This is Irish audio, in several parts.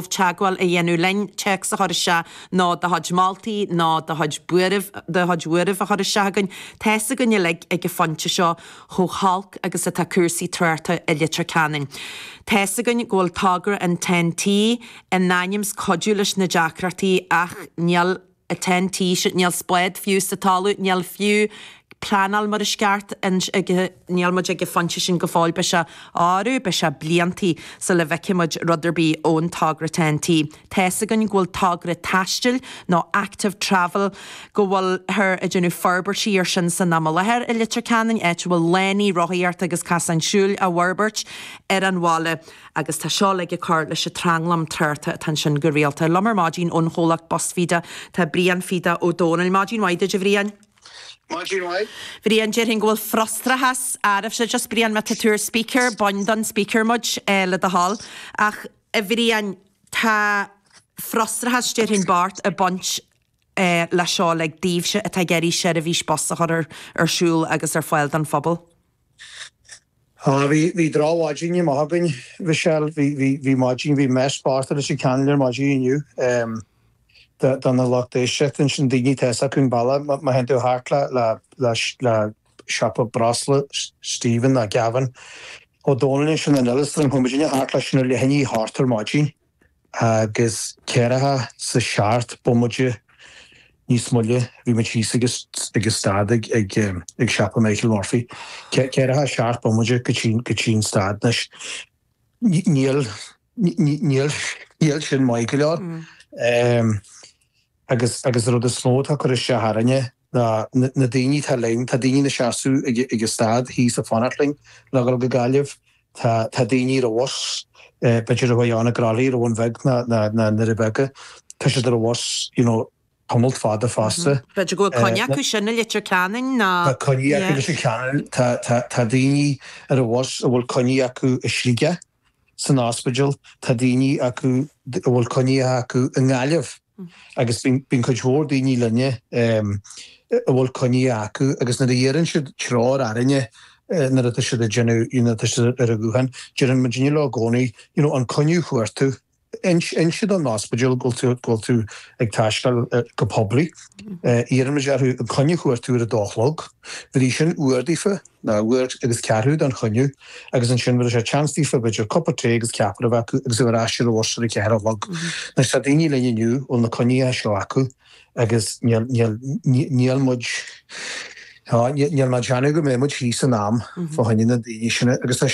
teagmháil a dhéanamh linn, téacs a chur isteach nó do chuid moltaí nó do chuid buairimh, do chuid buairimh a chur isteach againn. Tá a fhios againn uilig ag an phointe seo chomh holc agus atá cúrsaí tráchta i Leitir Ceanainn. Tá a fhios againn go bhfuil togra an ten-t in ainm 's cuidiú leis na deacrachtaí ach níl a ten T sin níl spád fiú sa talamh níl fiú pleanáil mar is ceart ag níl muid ag an phointe sin go fóill beidh sé arú beidh sé bliantaí sula bhfeicfidh muid rud ar bith ón togra ten T tá's againn go bhfuil togra taistil nó active travel go bhfuiltear ag déanamh forbairtí ar sin san am i láthair i Leitir Ceanainn áit a bhfuil lánaí rothaíochta agus casáin siúil á bhforbairt ar an bhaile agus tá seo uilig ag cur leis an tranglam tráchta atá ansin go rialta. Liom ar maidin ón chomhlacht Bus Feda tá Brian Feda Ó Domhnaill. Maidin mhaith duit, a Bhriain. Maidin mhaith. Bhriain, déarfainn go bhfuil frustrachas arbhse just Brian má tá tú ar speaker, bain don speaker muid, le do thoil. Ach, a Bhriain, tá frustrachas, déarfainn ceart, ag baint leis seo uilig daoibhse atá ag iarraidh seirbhís bus a chur ar siúl agus ar fáil don phobal. Á, bhí, bhí drochmhaidin amach againn Mhichelle, bhí, bhí, bhí maidin, bhí mise báite leis an cineál ar maidin inniu em do, do na lucht éisteachta ansin, daoine atá fhios acu an bealach, má, má théann tú thart le, le, le, le siopa breosla Stephen nó Gavin Ó Dónaill ansin in Ellis Droim Coimídine thart leis na leithidí thart ar maidin. agus ceathracha is a seacht bomaite níos moille bhí muid thíos ag stad ag siopa Michael Murphy. Ceathracha seacht bomaite go dtí an stad anois. Níl sin maith go leor agus an rud is mó atá ag cur isteach orainne, ná na daoine atá linn, tá daoine ina seasamh ag an stad thíos ag fanacht linn le dhul go Gaillimh, tá daoine ar an bhus, b'fhéidir a bhí ann i gCroithlí ar an Bhun Bheag nó i nDoire Beaga, tá siad ar an bhus you know tamalt fada fosta. B'fhéidir go bhfuil coinne acu sin i Leitir Ceanainn nó. Tá coinní acu i Leitir Ceanainn, tá daoine ar an bhus a bhfuil coinní acu i Sligeach. san ospidéal, tá daoine acu a bhfuil coinneacha acu i nGaillimh agus bíonn cuid mhór daoine linne a bhfuil coinneacha acu agus nuair a iarrann siad treoir orainne nuair atá siad ag déanamh, nuair atá siad ar a ghuthán, deireann muid leo i gcónaí, you know, an coinne a fuair tú? Inis don ospidéal go bhfuil tú ag taisteal go poiblí. Iarraimid orthu an coinne a thabhairt uair a dó a chlog. Bheir sin uair daofa, nó uair agus ceathrú don choinne, agus ansin bheir sé seans daofa b'fhéidir cupán tae agus ceapaire a bheith acu agus iad ar ais ar a bhus ar a ceathair a chlog. Anois tá daoine linn inniu a bhfuil na coinní seo acu agus níl muid, á, níl mé ag déanamh go mbeidh muid thíos in am fá choinne na ndaoine sin agus tá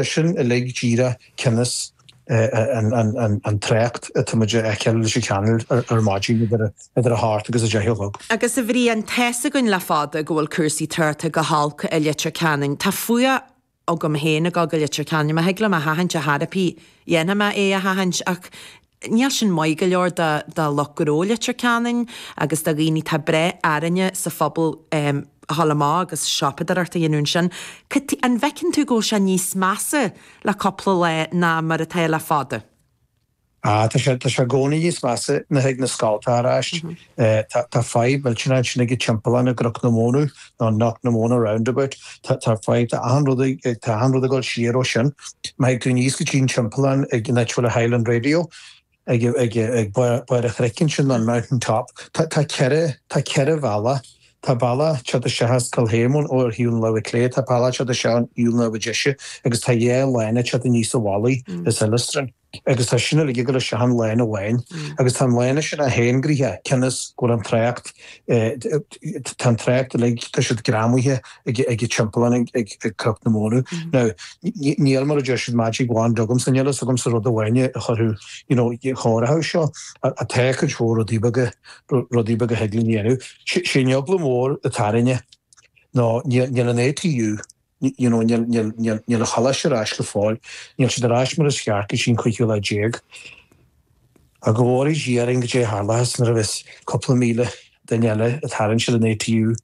sin uilig díreach, cionn is, an trácht atá muid a fheiceáil i Leitir Ceanainn ar maidin idir a hocht agus a deich a chlog. Agus a Bhriain, tá a fhios againn le fada go bhfuil cúrsaí tráchta go holc i Leitir Ceanainn, tá fuath agam féin ag dul go Leitir Ceanainn, má thig liom é a sheachaint ar chor ar bith, déanfaidh mé é a sheachaint, ach níl sin maith go leor do lucht gnó Leitir Ceanainn agus do dhaoine, atá ag brath orainne sa phobal a dhul amach agus siopadóireacht a dhéanamh ansin, an bhfeiceann tú go bhfuil sé níos measa le cúpla lá ná mar atá le fada. Á, tá sé, tá sé i gcónaí níos measa nuair a thig na scoilte ar ais. Tá, tá fadhb mhillteanach ansin ag an timpeallán i gCnoc na Móna, nó Knock na Mona Roundabout. Tá, tá fadhb, tá achan rud ag, tá achan rud ag dul siar ó sin. Má thig tú aníos go dtí an timpeallán ag an áit a bhfuil an Highland Radio, ag barr an chnoic ansin, an mountain top. Tá ceithre, tá ceithre bhealach. Tá bealach ag teacht isteach as Calhame ar thaobh na láimhe clé, tá bealach ag teacht isteach ó thaobh na láimhe deise agus tá dhá lána ag teacht aníos an bealach as Illistrin. Agus tá sin uilig ag dul isteach in aon lána amháin. Agus tá an lána sin an-ghnoitheach, cionn is go bhfuil an trácht, tá an trácht uilig, tá siad greamaithe, ag an timpeallán ag Cnoc na Móna. Now, níl, mar a deir siad, magic wand agam, so níl fhios agamsa rud amháin a chuirfeadh, you know, a chóireochas seo, ach tá cuid mhór rudaí beaga, rudaí beaga a thig linn a dhéanamh. Sé sé an eagla mhór atá orainne ná níl, níl an ATU, you you know, níl, níl, níl, níl an coláiste ar ais go fóill, níl siad ar ais mar is ceart go dtí an cúigiú lá déag. Ach go bhfóiridh Dia orainn caidé a tharlóchas nuair a bheas cúpla míle duine eile ag tarraingt ar an ATU.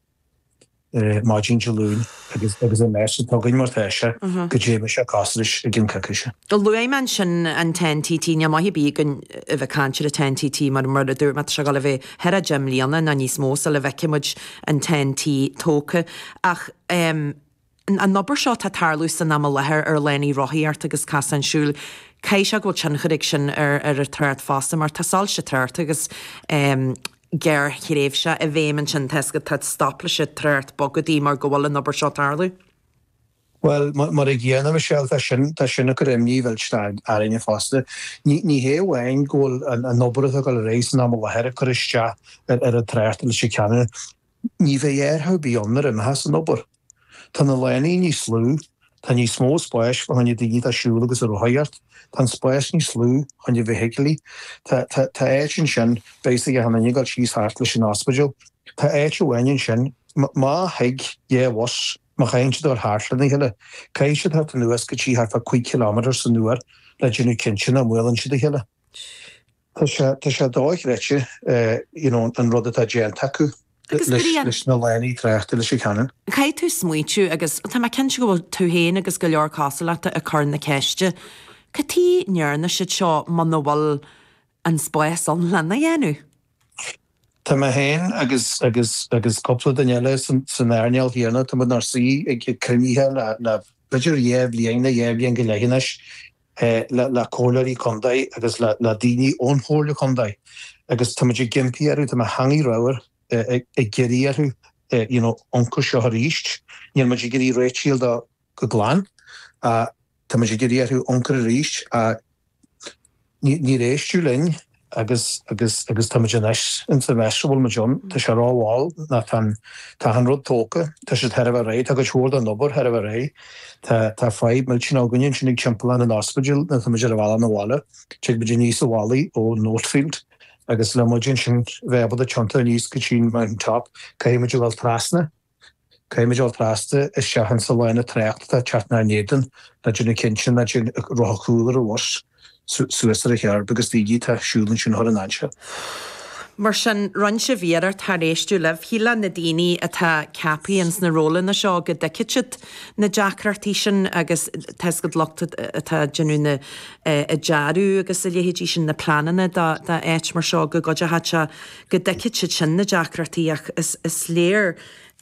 maidin Dé Luain agus agus an mess atá againn mar tá sé caidé a bheas sé cosúil leis i gcionn coicíse. Luaigh mé ansin an TEN-T, níl maith ar bith againn a bheith ag caint ar an TEN-T mar mar a dúirt mé tá sé ag gabháil a bheith thart ar deich mbliana nó níos mó sula bhfeicfidh muid an TEN-T tógtha ach eh an obair seo atá ag tarlú san am i láthair ar lánaí rothaíochta agus cosáin siúil, caithfidh sé go bhfuil tionchar ag sin ar ar an trácht fosta mar tá soilse tráchta agus gearrthréimhse i bhfeidhm ansin, tá tá stop leis an trácht bogadh mar go bhfuil an obair seo ag tarlú. Bhuel, mar an gcéanna Michelle, tá sin tá sin ag cur imní mhillteanach orainne fosta. Ní ní hé amháin go bhfuil an an obair atá ag dul ar aghaidh san am i láthair ag cur isteach ar ar an trácht, i Leitir Ceanainn, Ní bheidh athrú ar bith ann nuair a imeochas an obair. Tá na lánaí níos lú, tá níos mó spáis fá choinne daoine atá ag siúl agus ag rothaíocht, tá an spás níos lú fá choinne feithiclí, tá, tá, tá áit ansin, beidh a fhios ag achan duine ag gabháil síos thart leis an ospidéal, tá áit amháin ansin, má, má thig dhá bhus má chaitheann siad dul thart lena chéile, caithfidh siad teacht anuas go dtí thart fá 5 km san uair le déanamh cinnte nach mbuaileann siad a chéile. Tá sé dochreidte you know an rud atá déanta acu leis na lánaí tráchta i Leitir Ceanainn. Caithfidh tú smaointiú, agus tá mé cinnte go bhfuil tú féin agus go leor cosúil leat ag cur na ceiste, cad tuige a ndearna siad seo muna bhfuil an spás ann lena dhéanamh? Tá mé féin agus agus agus cúpla duine eile san earnáil chéanna, tá muid inár suí ag cruinnithe le b'fhéidir dhá bhliain nó dhá bhliain go leith anois le comhairleoirí contae agus le daoine ón chomhairle contae agus tá muid ag impí orthu, tá mo theangaidh ramhar, ag iarraidh orthu you know amharc air seo arís, níl muid ag iarraidh réitithe a fháil de go glan ach tá muid ag iarraidh orthu amharc air arís ach níor éisteadh linn. agus, agus, agus tá muid anois insa mess a bhfuil muid ann, tá sé ró mhall, ná tá an rud tógtha, tá sé chóir a bheith réidh, tá cuid mhór den obair chóir a bheith réidh, tá, tá fadhb millteanach againne ansin ag timpeallán an ospidéil nuair atá muid ar an bhealach 'na bhaile, tig muid aníos an mhalaidh ón Oatfield agus le muid ansin bheith ábalta tiontadh aníos go dtí'n Mountain Top caithfidh muid a dhul trasna Caithfidh muid a dhul trasna isteach insa lána tráchta atá ag teacht inár n-éadan, ná déanamh cinnte nach dtéann rotha cúil an bhus suas ar an kerb agus daoine atá ag siúl ansin a chur i ndainséar. Mar sin, rinn sibh iarracht char éisteadh libh. Shílfeá na daoine atá ceaptha ins na rólanna seo go dtuigfeadh siad na deacrachtaí sin agus tá's agat an lucht atá ag déanamh na dearadh agus a leithéidí sin, na pleananna do áit mar seo go gcuideoidh sé. go dtuigfeadh siad sin na deacrachtaí ach is léir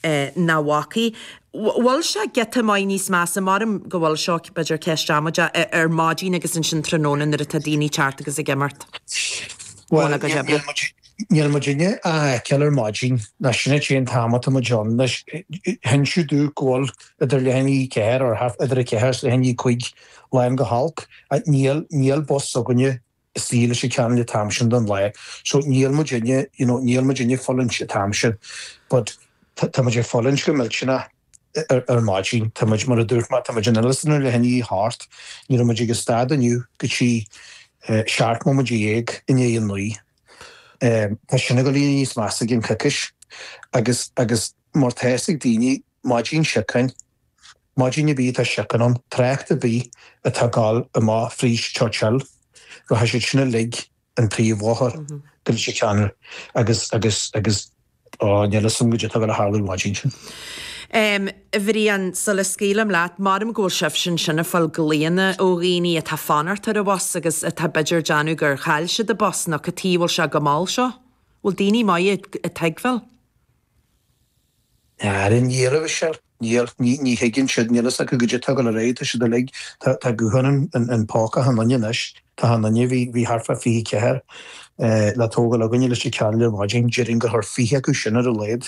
nach bhfacaidh. Bhfuil sé giota maith níos measa, maram go bhfuil seo b'fhéidir ceist amaideach, ar maidin agus ansin tráthnóna nuair atá daoine ag teacht agus ag imeacht. Bhuel, níl muidinne ach á fheiceáil ar maidin, nó sin an té an t-am atá muid ann anois. Hinsíodh domh go bhfuil idir leath i ndiaidh a ceathair, or half, idir a ceathair is leath i ndiaidh a cúig lán chomh holc. Níl bus s'againne i Leitir Ceanainn an t-am sin den lá so níl muidinne, you know, níl muidinne ag fulaingt an t-am sin but tá muid ag fulaingt go millteanach ar maidin, tá muid, mar a dúirt mé, tá muid in Illistrin leath i ndiaidh a hocht, ní raibh muid ag an stad inniu go dtí seacht mbomaite déag i ndiaidh a naoi. Tá sin ag gabháil a éirí níos measa i gcionn coicís agus, agus mar tá's ag daoine, maidin siocáin, Maidin ar bith atá siocán ann, trácht ar bith atá ag gabháil amach fríd Churchill, rachaidh siad sin uilig an príomhbhóthar go Leitir Ceanainn agus, agus, agus, ó, níl 'fhios a'm goidé tá ag gabháil a tharlú an mhaidin sin. Em, a Bhriain, sula scaoilim leat, maram go bhfuil sibhse ansin a' fáil glaonna ó dhaoiní atá fanacht ar a bhus agus atá b'fhéidir déanamh gur chaill siad a bus nó cad tuige a bhfuil sé chomh mall seo? Bhfuil daoiní maith ag tuigbheáil? Ar an iarraidh sin, níor, ní, ní thuigeann siad, níl fhios acu goidé tá ag gabháil ar aghaidh, tá siad uilig, tá, tá gutháin an, an, an póca achan duine anois, tá achan duine, bhí, bhí thart fá fiche ceathair le tógáil againne i Leitir Ceanainn ar maidin, déarfainn gur chuir fiche acu sin ar a laghad,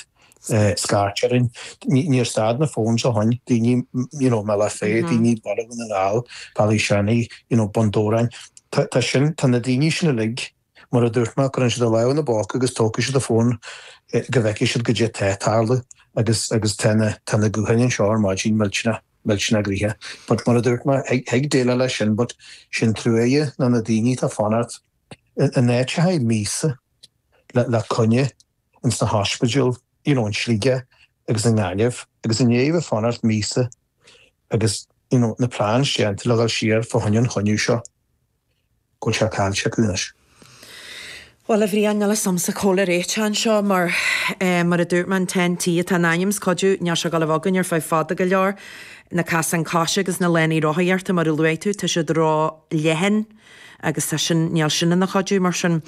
scairt orainn, ní, níor stad na phones ó shoin, daoine, you know, i mBealach Féich, daoine Baile Dhún na nGall, Ballyshannon, you know, Bun Dobhráin, tá, tá sin, tá na daoine sin uilig. Mar a dúirt mé, cuireann siad a lámh ina bpóca agus tógfaidh siad an fón go bhfeicfidh siad goidé tá ag tarlú agus agus tá na tá na gutháin anseo ar maidin millteanach millteanach gnoitheach but mar a dúirt mé, thig déileáil leis sin but sé an truaighe ná na daoine atá ag fanacht in áiteacha míosa le le coinne ins na hospidéil you know in Sligeach agus i nGaillimh agus you know ag fanacht míosa agus you know na plans déanta le dhul siar fá choinne an choinne seo. go bhfuil sé caillte acu anois. Bhuel, a Bhriain, níl fhios agamsa cá bhfuil an réiteach anseo, mar, mar a dúirt mé, an Ten T atá in ainm is cuidiú, níl sé ag gabháil a bheith againn ar feadh fada go leor, na casáin coise agus na lánaí rothaíochta, mar a luaigh tú, tá siad ró-leathan agus tá sin, níl sin ina chuidiú, mar sin,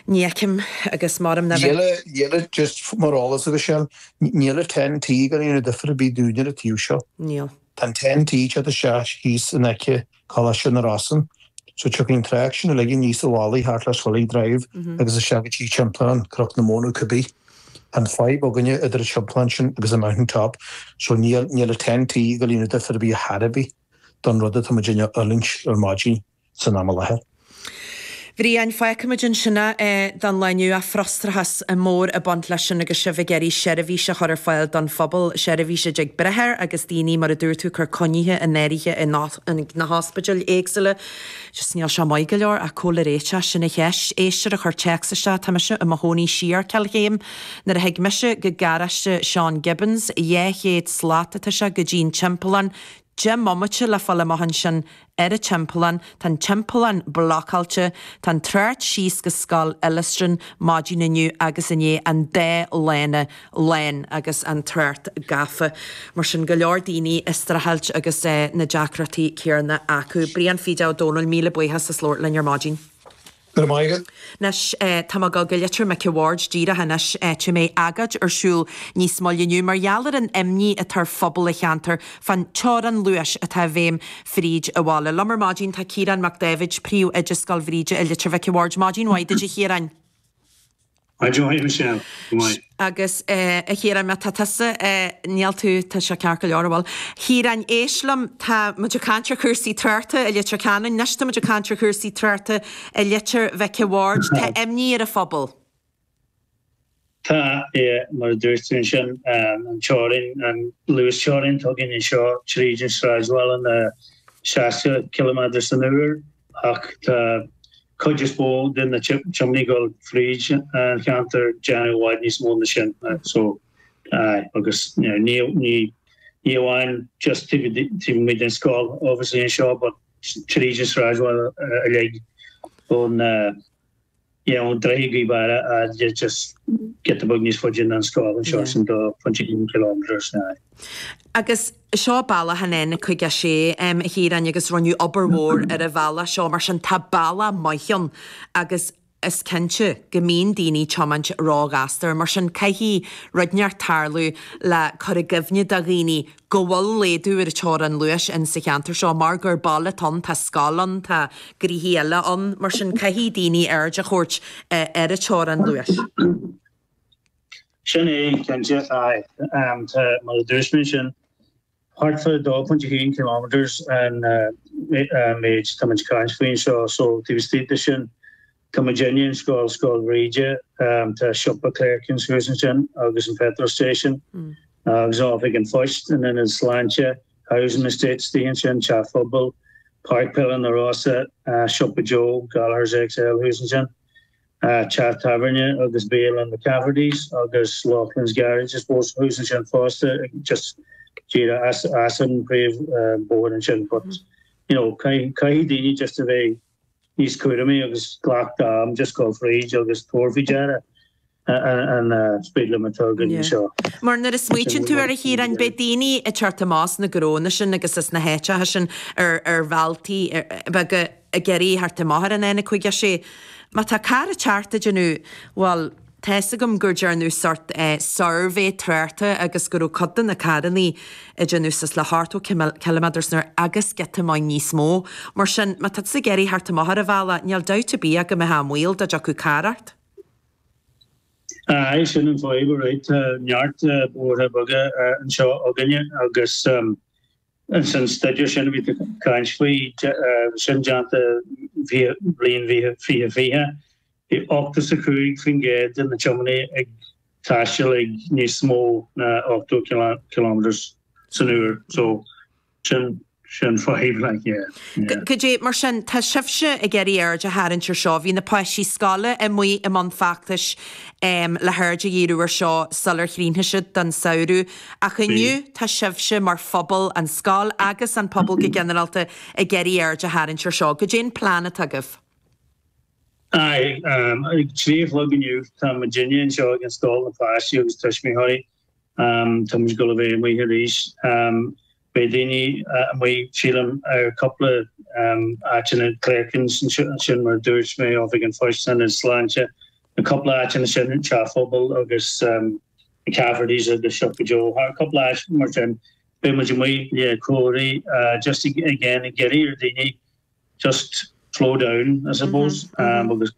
ní fheicim agus m'orm ná bheith. Níl, níl, just mar eolas agat féin, níl an Ten T ag déanamh difir ar bith dúinn ar an taobh seo. Níl. Tá an Ten T, teacht isteach, thíos in aice Coláiste na Rosann. So tiocfaidh an trácht sin uilig aníos an mhalaidh, thart le Swilly Drive agus isteach go dtí Timpeallán, Cnoc na Móna cibé. Tá an fadhb againne idir an timpeallán sin agus an Mountain Top so níl, níl an Ten T ag gabháil a dhéanamh difear ar bith chor ar bith don rud atá muid a fhulaingt ar maidin san am i láthair. Bhriain, fágfaimid ansin é don lá inniu, frustrachas mór ag baint leis sin agus sibh ag iarraidh seirbhís a chur ar fáil don phobal, seirbhís a dtig brath air agus daoine, mar a dúirt tú, cur coinnithe in áirithe ins na hospidéil éagsúla. Just níl sé maith go leor ach cá bhfuil an réiteach, sin an cheist. Éisteoir a chuir téacs isteach, tá mise i mo chónaí siar Cill Chéim. Nuair a thig mise go garáiste Seán Gibbons, dhá chéad slat atá sé go dtí'n timpeallán, Deich mbomaite le fáil amach ansin ar an timpeallán, tá an timpeallán blocáilte, tá an trácht síos go scoil Illistrin maidin inniu agus inné, an dá lána, lane, agus an trácht gafa. Mar sin, go leor daoine ag streachailt agus na deacrachtaí céanna acu. Brian Feda Ó Domhnaill, míle buíochas as labhairt linn ar maidin. Go raibh maith agat. Anois, tá mé ag gabháil go Leitir Mhic an Bhaird díreach anois, áit a mbeidh agóid ar siúl níos moille inniu mar gheall ar an imní atá ar phobal an cheantair fán teorann luais atá i bhfeidhm fríd an bhaile. Liom ar maidin tá Ciarán Mac Dáibhid, Príomhoide Scoil Bhríde i Leitir Mhic an Bhaird. Maidin mhaith duit a Chiaráin. I do shuigh mise ann, go maith. Agus, eh, a Chiaráin, má tá tusa, eh, níl tú, tá sé ceart go leor, a bhuel. Chiaráin, éist liom, tá muid ag caint ar chúrsaí tuartha i Leitir Ceanainn, anois tá muid ag caint ar chúrsaí tuartha i Leitir Mhic a' Bhaird, tá imní ar an phobal. Tá, eh, mar a dúirt tú ansin, eh, an teorainn, an luasteorainn, tugann é seo tríd an sráidbhaile na seasca ciliméadar san uair, ach tá cuid is mó de na tiománaithe ag dul fríd an cheantar ag déanamh i bhfad níos mó na sin so aye agus ní ní amháin just taobh taobh amuigh den scoil obviously anseo but tríd an sráidbhaile uilig ón Dhéanfadh Droichead Ghaoth Beara ard de just giota beag níos faide ná an scoil anseo ar son 2.1 km ar snáith. Agus seo bealach an N56, a Chiaráin, agus rinneadh obair mhór ar an bhealach seo, mar sin tá bealach maith ann agus is cinnte go mbíonn daoine ag tiomáint ró-ghasta air. Mar sin caithfidh rud inteacht tarlú le cur i gcuimhne do dhaoine go bhfuil laghdú ar teorainn luais in sa cheantar seo mar gur baile atá ann, tá scoil ann, tá gnoithe eile ann, mar sin caithfidh daoine aird a thabhairt ar an teorainn luais. Sin é, cinnte. Aye. Tá, mar a dúirt mé sin, thart fá 2.1 kilometres an méid atá muid ag caint faoi anseo, so taobh istigh de sin, Tá muidinne in Scoil Scoil Bhríde tá siopa Clerkin's suas ansin agus an petrol station agus oifig an phoist an Ionad Sláinte, housing estate istigh ansin, teach phobail, Páirc Peile na Rossa, siopa Joe Gallagher's XL thuas ansin, teach tábhairne agus bialann McCafferty's agus Loughlin's Garage I suppose thuas ansin fosta just díreach as as an bpríomh bóthar ansin but you know caithfidh caithfidh daoine just a bheith níos cúramaí agus glacadh a n-am, just ag gabháil fríd agus tabhairt faoi deara an speed limit atá againn anseo. Mar nuair a smaoitíonn tú air a Chiaráin, beidh daoine ag teacht amach as na gnónna sin agus as na háiteacha sin ar bhealtaí beaga ag iarraidh theacht amach ar an N56. Má tá carr ag teacht ag déanamh, bhuel, Tá 'fhios agam go ndearnadh sort eh suirbhé tráchta agus go raibh cuid de na carrannaí ag déanamh suas le ochtó cime ciliméadar san uair agus giota maith níos mó. Mar sin, má tá tusa ag iarraidh theacht amach ar an bhealach, níl dabht ar bith agam go mbeifeá i mbaol dá dtiocfadh carr ort. Aye, sin an fadhb, alright, tá neart bóithre beaga anseo againne agus, Ins an stuidéar sin a bhí caint faoi, sin déanta bliain fiche fiche, bhí ochtó 's a cúig faoin gcéad de na tiomanaí ag taisteal ag níos mó ná ochtó kilometres san uair, so sin an fadhb, like, yeah. Cad é, mar sin, tá sibhse ag iarraidh aird a tharraingt air seo, bhí na páistí scoile amuigh i mbun feachtais le haird a dhíriú air seo sular chríochnaigh siad don samhradh, Ach inniu tá sibhse mar phobal, an scoil agus an pobal go ginearálta, ag iarraidh aird a tharraingt air seo. Cad é an plean atá agaibh? Aye. Ag trí a chlog inniu tá muidinne anseo ag an scoil, na páistí agus tuismitheoirí. Tá muid ag gabháil a bheith amuigh arís. Beidh daoine amuigh sílim ar cupla áiteanna glacann sin mar dúirt mé Oifig an Phoist 's an Ionad Sláinte na cupla áiteanna sin Teach an Phobail agus na Caffertys agus Siopa Joe thar cupla áit mar sin beidh muid amuigh le comharthaí just again ag iarraidh ar daoine just slow down I suppose agus